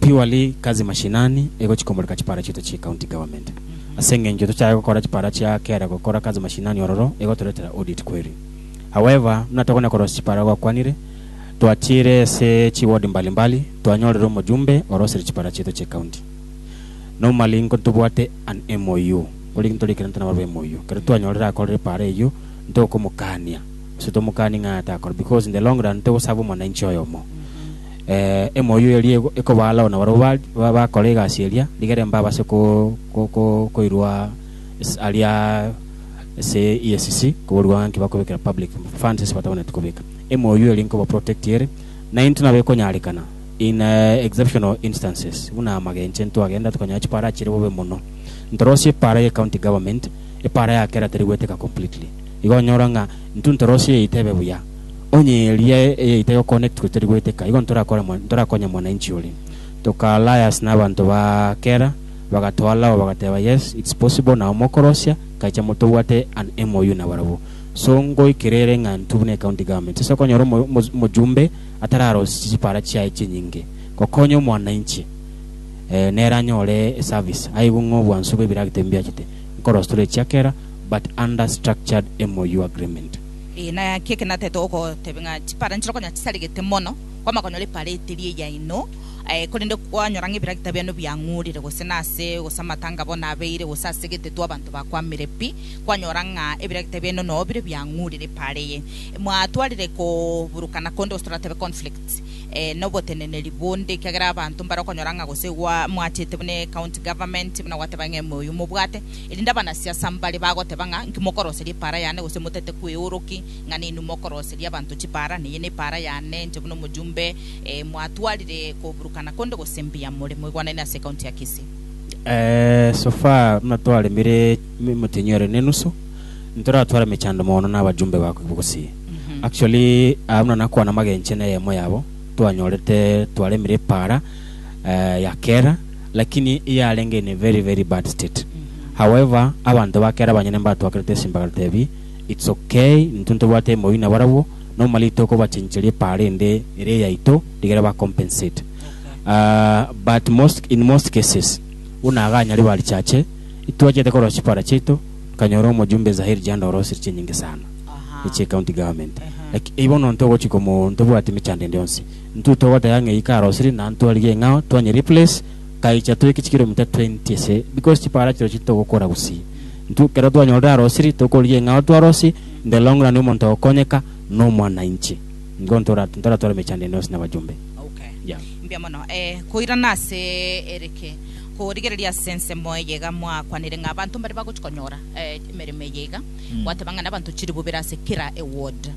Purely kazi mashinani egochi komoreka chipara chiaito chie county government. Ase engencho tochae gokora chipara chia kera gokora kazi mashinani ororo egotoretera audit query. However, buna togona korosia chipara gokwanire, twatiire ase chi ward mbali mbali twanyorire omojumbe orosire chipara chiaito chie county. Normally nko ntobwate an MOU, ore ntori ekero nto nabarabwo MOU, ekero twanyorire akorire epara eyio ntokomokania gose tomokanie ng'a atakore because in the long run togoserve omwananchi oyomo. Emoyo eria nigo ekobaa alao nabarabwo bakore egasi eria, rigere mbabase koirwa aria ase EACC koborua nki bakobekera public funds ase batabanetie kobeka. Emoyo eria nkobaprotect ere, na intwe nabo ekonyarekana in exceptional instances buna amagencho ntwagenda tokanyora chipara chire bobe mono. Ntorosie epara ye county government, epara ya kera teri goeteka completely. Igo onyora ng'a intwe ntorosie eite ebe buya. Onye eria eyaito egoconnectwa etari goeteka, igo ntorakonye mwananchi oria. Toka alliance nabanto ba kera, bagatwala aba bagateba yes it's possible nao mokorosia kaicha motobwate an MOU nabarabwo. So ngoikera ere ng'a intwe buna ecounty government ase okonyora omojumbe atararosia chipara chiaye chinyinge gokonya omwananchi nere anyore eservice aigwe ng'a obwansu bwebiragita ebi mbiachete nkorosia tore echiakera but under structured MOU agreement. Ee, naki eke natete gokotebia, ng'a chipara nichire konya chisarigete mono, kwamanya konyora epara eteria eya inwe, ee, korende kwanyora ng'a ebiragita biane biang'urire, gose nase, gose amatanga bono abeire, gose ase egetetwa abanto bakwamire pi, kwanyora ng'a ebiragita biaino noo bire biang'urire epara eye. Mwatwarire koburukana konde, gose toratebe conflict, ee, na oboteneneri bonde, ekiagera abanto mbare okonyora ng'a gose gwa, mwachete buna ecounty government, buna gwateba ng'a ime oyio mobwate, Erinde abanasiasa mbare bagoteba ng'a inki mokoroseria epaara yane, gose motete kweoro ki ng'a ninwe mokoroseria abanto chipaara, neye nepaara yane inche buna omojumbe mwatwarire koburukana konde gose mbuya more. Moigwanane ase ekaunti ya Kisii. So far buna twaremire motenyi ore nenusu, ntoratware emechando mono na abajumbe ba Kivu Gusii. Actually aa buna nakwana magenche neyemo yabo twanyorete twaremire epaara ya kera, Lakini yarenge in a very very bad state however abanto ba kera abanyene mbatwakerete ase mbagera tebi it's ok intwe ntobwate emori na barabwo normally tokobachencheria epaara ende ere eyaito rigere ba compensate aah but most in most cases buna iga anyare ba richache itwachete korora chipara chiaito nkanyora omojumbe Zahir Janda orosire chinyinge sana Aha. eche county government Aha. like eibono ntogochia komo ntobwate emechando ende yonsi Intwe togoteba ng'a eyio karosiri na ntwarigia eng'ao twanye replace kaicha toike chikilomita twenty ase because chipara achio chirochio togokora gusii intwe ekero twanyorire arosiri tokorigia eng'ao twarosi in the long run omonto ogokonyeka nomwanainchi nigo ntora ntoratware emechando ende yonsi na abajumbe Okay. Yeah. Mbuya mono. Eh, koirana ase erike. Korigereria ase ensemo eye iga mwakwanire ng'a abanto mbare bagochia konyora eh, emeremo eye iga. Gwateba ng'a nabanto chilifu bere ase kera eward.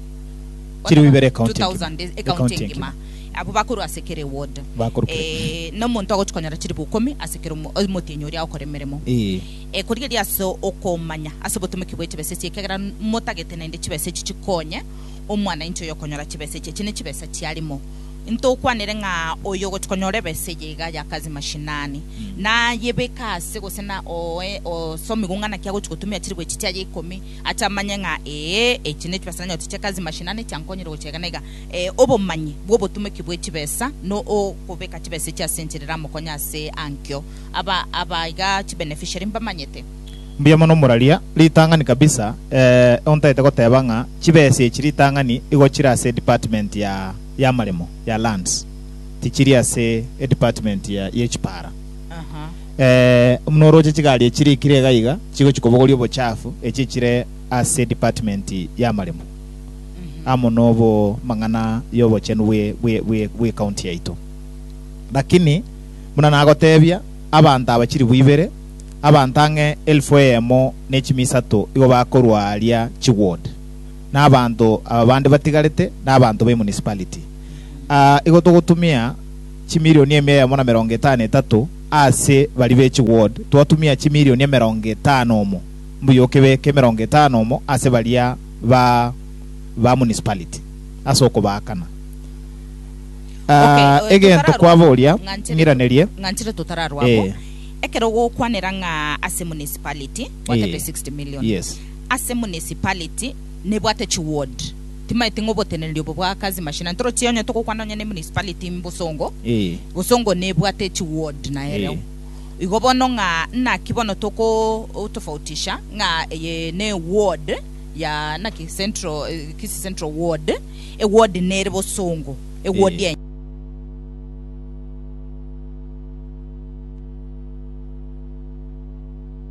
Chilifu ibere ecounty engima, ecounty engima. Abwo bakorwa ase kera eward. Bakorwa kera- Eh, na omonto agochi konyora chilifu ikomi ase kera omo- omotienyi oria agokora emeremo. Ee. Eh, korigeria ase okomanya ase obotomeki bwe chibesa echi, ekiagera n- motagete naende chibesa echi chikonye omwanainchi oyo okonyora chibesa echi. Echi ne chibesa chiarimo. Ntokwanere ng'a oyo ogochi konyora ebesa eye iga ya kazi mashinani, nayebeka ase gose na oe- osomigwe ng'a naki agochi gotumia chilifu echi chiaye ikomi, Acha amanye ng'a ee, echi ne chibesa nanyorete chia kazi mashinani chiankonyire gochia iga na iga. Ee, obomanyi bw'obotumeki bwe chibesa no okobeka chibesa echi ase enchera eramokonye ase ankio. Aba aba iga chi beneficiary mbamanyete. Mbuya mono moraria, ritang'ani kabisa, ee, ontagete goteba ng'a chibesa echi ritang'ani igo chire ase department ya y'amaremo, ya lands, tichiri ase edepartment ya y'echipara. Aha. Ee, buna oroche chigari echi rikire iga iga chigochia kobogoria obochafu echi echire ase department y'amaremo amo nobo mang'ana y'obochenu bwe bwe bwe bwe county yaito. Lakini buna nagotebia, abanto aba chilifu ibere, abanto ang'e elfu eyemo ne chimi isato igo bakorwa aria chiward, na abanto aba bande batigarete na abanto be municipality. Ah, igo togotumia chimilioni emia eyemo na merongo etano etato ase baria be chiward, twatumia chimilioni emerongo etano omo, mbuya okebeke emerongo etano omo ase baria ba ba municipality ase okobaakana. Okay, Ah, eh, egento totararwa kwaba abwo, oria ng'anchire to- ng'iranerie, ng'anchire totararwa abwo. Eh. ekero gokwanera ng'a ase municipality bwate Eh. pe 60 million Yes. ase municipality nebwate chiward Timaeti ng'a oboteneneri obo bwa Kazi Machine ntoroche onye togokwana onye ne municipality mbosongo, bosongo nebwate chi ward na ereo igo bono ng'a naki bono toko tofautisha ng'a eye ne ward ya naki central Kisii central ward e ward nere bosongo e ward enye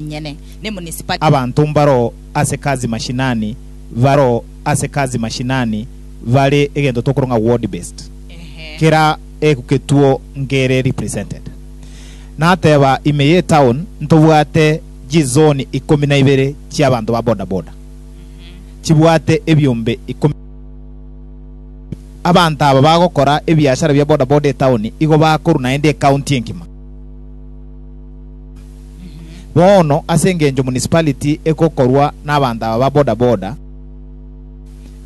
nyene ne municipality. Abanto mbaro ase Kazi Mashinani baro. ase Kazi-mashinani bare egento tokorong'a word based, kera eku ketuo nkere represented. Nateba ime ye town ntobwate chi zone ikomi na ibere chia abanto ba boda boda chibwate ebiombe ikomi Abanto aba bagokora ebiashara bia boda boda etown igo bakorwa naende ecounty engima. Bono ase engencho municipality egokorwa nabanto aba ba boda boda,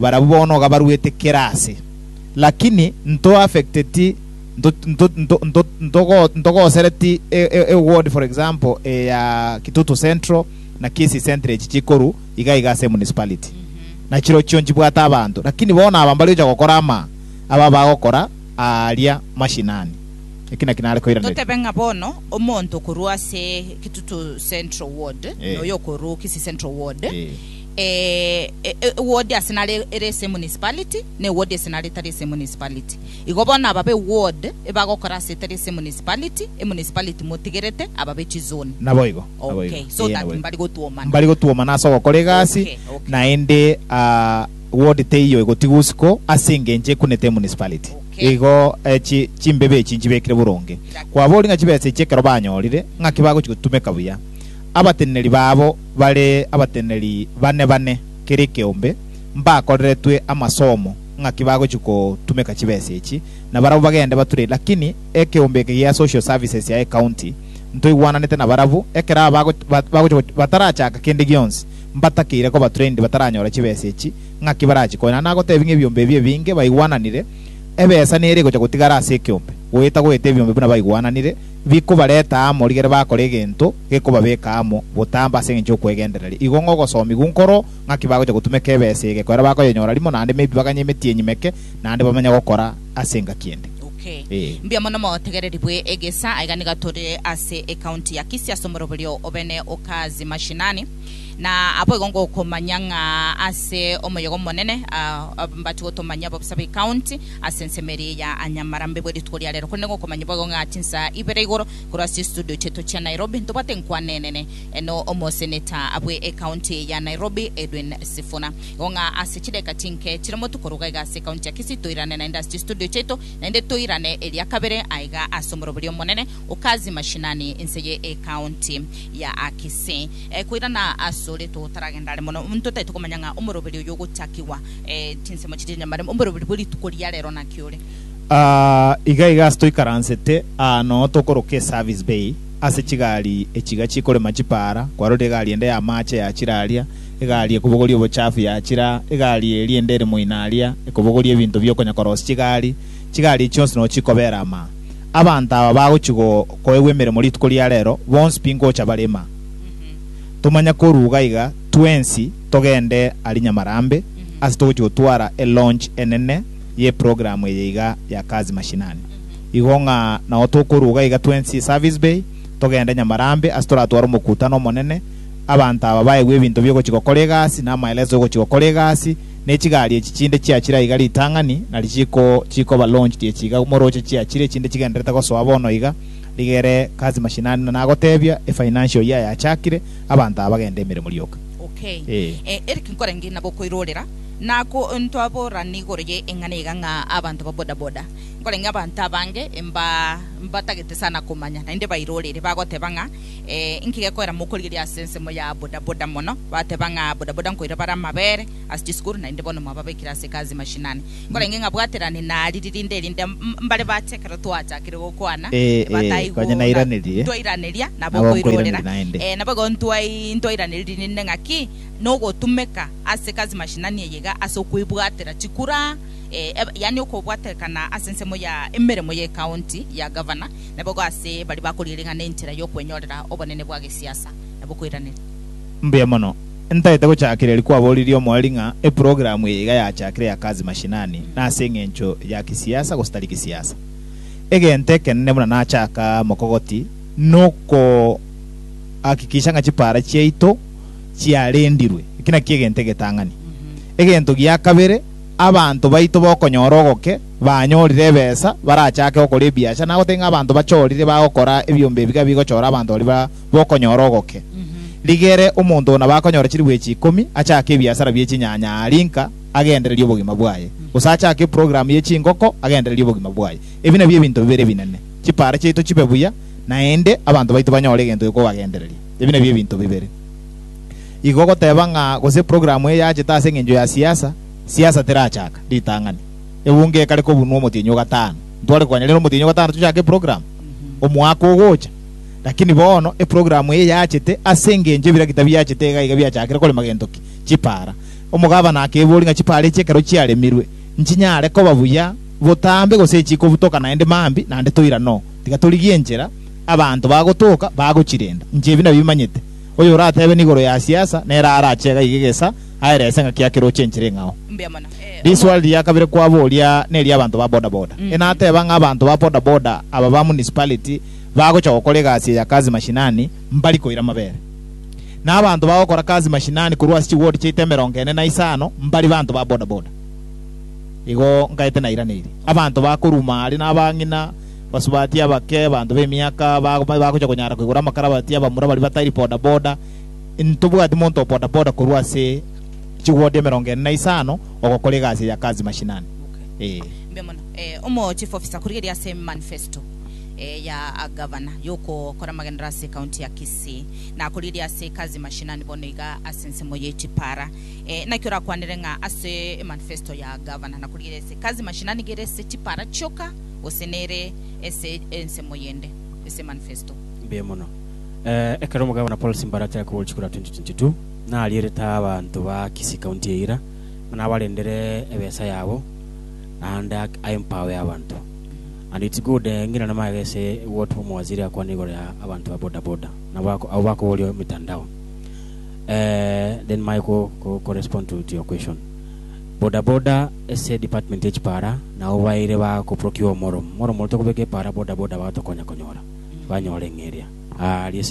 barabwo bono iga baruete kera ase. Lakini nto affecteti ntogosereti e ward for example eya Kitutu Central na Kisii Central echi chikoru iga iga ase municipality. Na chirochio nchibwate abanto. Lakini bono aba mbari gocha gokora ama aba bagokora aaria mashinani. Eki naki nare koiraneria. Totebe ng'a bono omonto okorwa ase Kitutu Central Ward, Eh. na oyo okorwa Kisii Central Ward, Eh. eh, e- e- eward ase nare ere ase emunicipality, na eward ase nare etari ase emunicipality. Igo bono aba b'eward ebagokora ase etari ase emunicipality, emunicipality motigerete aba be chizone. Naboigo, naboigo. Okay, so Eya, that naboigo. mbari gotwomana. mbari gotwomana ase ogokora egasi Okay, okay. naende ah, ward teiyo egotigwa usiku ase engencho ekunete emunicipality Igo echi chimbibe echi nchibekire boronge, kwaboria ng'a chibesa echi ekero banyorire, ng'aki bagochia gotumeka buya. Abateneneri babo bare abateneneri bane bane kera ekeombe, mbakoreretwe amasomo ng'aki bagochia gotumeka chibesa echi, na barabwo bagende bature. Lakini ekeombe eke gia Social Services ya ecounty ntoigwananete nabarabwo, ekero aba bagochia batarachaka kende gionsi, mbatakeire kobatura indi bataranyora chibesa echi, ng'aki barachie koirana na gotebia ng'a ebiombe ebi ebinge baigwananire, ebesa nere egocha gotigara ase ekeombe, goeta goeta ebiombe buna baigwananire, bikobareta amo rigere bakore egento gekobabeka amo botambe ase engencho y'okwegendereria. Igo ng'a ogosomigwa nkoro ng'aki bagocha gotumeka ebesa ege, ekero bakoyenyora rimo, naende mebibaganie emetienyi meke, naende bamanye gokora ase engaki ende. Okay. Ee. Mbuya mono motegereri bwe egesa. Aiga niga tore ase ecounty ya Kisii ase omoroberio obene o Kazi Mashinani. Na aboigo ngokomanya ng'a ase omoyogo omonene mbati gotomanyia abobisa b'ecounty ase ensemo eria ya Anyamarambe bwe rituko ria rero, korende ngokomanya boigo ng'a chinsa ibere igoro korwa ase estudio chiaito chia Nairobi ntobwate enkwana enene no omoseneta bwe ecounty eye ya Nairobi Edwin Sifuna. Igo ng'a ase chidakika chinke chire motuko ruga iga ase ecounty ya Kisii toirane naende ase chistudio chiaito naende toirane eria kabere aiga ase omoroberio omonene Okazi mashinani ense ye ecounty ya Kisii eh, koirana asore totaragenda are mono omonto tari tokomanya ng'a omoroberi oyo ogochakigwa eh, chinsemo chiria nyamare omoroberi bwe rituko ria rero naki ore. Ah, iga iga ase toikaransete aa noo tokoroka eservice bay ase chigari echiga chikorema chipaara, kwarorire egari ende y'amaache yachire aria, egari ekobogoria obochafu yachire aa, egari eria ende ere moino aria ekobogoria ebinto biokonya korosia chigari, chigari echi chionsi noo chikobera amaa. Abanto aba bagochia koegwa emeremo rituko ria reero, bonsi pi ngocha barema. Tomanye koruga iga, twensi togende aria Nyamarambe, ase togochia gotwara elaunch enene y'eprogramu eye iga ya Kazi Mashinani. Igo ng'a nao tokoruga iga twensi eService Bay, togende Nyamarambe ase toratware omokutano omonene, abanto aba baegwe ebinto bi'ogochia gokora egasi, na amaeleso y'ogochia gokora egasi, ne chigari echi chinde chiachire aiga ritang'ani, na richiko chikoba launched echi iga morooche chiachire chinde chigendererete gosoa bono iga, rigere Kazi mashinani na nagotebia efinancial year yachakire, abanto aba bagende emeremo rioka. Ok. Ee. Eh, Eric nkorenge nabo okoirorera, na ko ntwaborana igoro ye eng'ana iga ng'a abanto ba boda boda, nkorenge abanto abange mba mbatagete sana komanya, naende bairorere, bagoteba ng'a, Ee, inki gekoira mokorigeria ase ensemo ya bodaboda mono? Bateba ng'a bodaboda nkoira bare amabere ase chisukuru naende bono mwababekire ase kazi ya mashinani. Nkorenge ng'a bwaterani nariri rinde erinde mbare bache ekero twachakire gokwana Ee, ee, bataigwa konya nairanerie, ntwairaneria nabo nabo nkoirorera nkoiraneria naende. Ee, nabo igo ntwai- ntwairaneiri rinde ng'a ki nogotumeka ase kazi ya mashinani eye iga ase okoibwatera chikura, ee, eb- yaani okobwaterekana ase ensemo ya emeremo y'ecounty ya gavana. naboigo ase baria bakoriring'ana enchera y'okwenyorera obonene bwa gesiasa na bokoiraneria. Mbuya mono. Ntaete gochakeria riria kwaboririe omoerio ng'a eprogramu eye iga yachakire ya kazi mashinani na ase eng'encho ya kisiasa gose tari kisiasa. Egento ekenene buna nachaka mokogoti nokohakikisha ng'a chipara chiaito chiarendirwe. Eki nakio egento egetang'ani. Egento gia kabere, abanto baito bokonyora ogoke Banyorire ebesa barachake gokora ebiacha, nagoteba ng'a abanto bachorire bagokora ebiombe ebiga bigochora abanto baria bokonyora ogoke. Rigere omonto ona bakonyora chiribu echi ikomi achake ebiasara bie chinyanya aa rinka agendererie obogima bwaye, gose achake eprogramu ye chingoko agendererie obogima bwaye. Ebi nabio ebinto bibere ebinene. Chipara chiaito chibe buya, naende abanto baito banyore egento gekobagendereria. Ebi nabio ebinto bibere. Igo goteba ng'a gose eprogramu eye yachete ase engencho ya siasa, siasa terachaka ritang'ani. Egunga ekare kobunwa omotienyi o gatano. Ntware konya rero omotienyi o gatano tochake eprogram omwaka ogocha. Lakini bono eprogram eye yachete ase engencho ebiragita biachete iga iga biachakire korema gento ki? Chipaara. Omogabana akeboria ng'a chipaara echi ekero chiaremirwe nchinyare koba buya botambe gose chikobutoka naende mambia? Naende toira no. Tiga torigie enchera abanto bagotoka bagochirenda. Inche ebi nabimanyete. Oyoratebe nigoro ya siasa nere arache iga iga egesa aerese ng'aki yake roche enchera eng'ao. Riswali ria kabere kwaboria neri abanto ba boda boda. E nateba ng'a abanto ba boda boda aba ba municipality bagocha gokora egasi eya kazi mashinani mbari koira mabere. Na abanto bagokora kazi mashinani korwa ase chiward chiaito emerongo ene na isano mbari banto ba boda boda. Igo nkaete nairaneirie. Abanto bakoruma aria nabang'ina, basubati abake, abanto bemiaka bagocha konyara koigora amakarabati, abamura baria batari boda boda. Intobwati monto o bodaboda korwa ase chigwoto emerongo ene na isano ogokora egasi eye ya kazi mashinani. Ee. Mbuya mono. Eh, omo chief officer korigereria ase manifesto eh, ya agavana yokokora amagenderero ase ecounty ya Kisii, na korigereria ase ekazi mashinani bono iga ase ensemo ye chipara. Eh, naki orakwanere ng'a ase emanifesto ya agavana na korigereria ase ekazi mashinani iga ere ase chipara chioka gose nere ase ensemo yende ase emanifesto? Mbuya mono. Eh, ekero Omogavana Paul Simbara achaka kogochikora 2022, narierete abanto ba Kisii County eira ng'a nabarendere ebesa yabo naende ak- I empower abanto. And it's good eh, ngina namanya gese what Omowaziri akwane igoro ya abanto ba boda boda nabo ako- abwo bakoboria emitandao. Eh, then manye ko, ko, ko respond to, to your question. Boda boda ase department y'echipara nao baeire ba koprocure omoro omoro omorito kobeka epara boda boda bagatokonya konyora banyore ng'a eria. Aaria ase.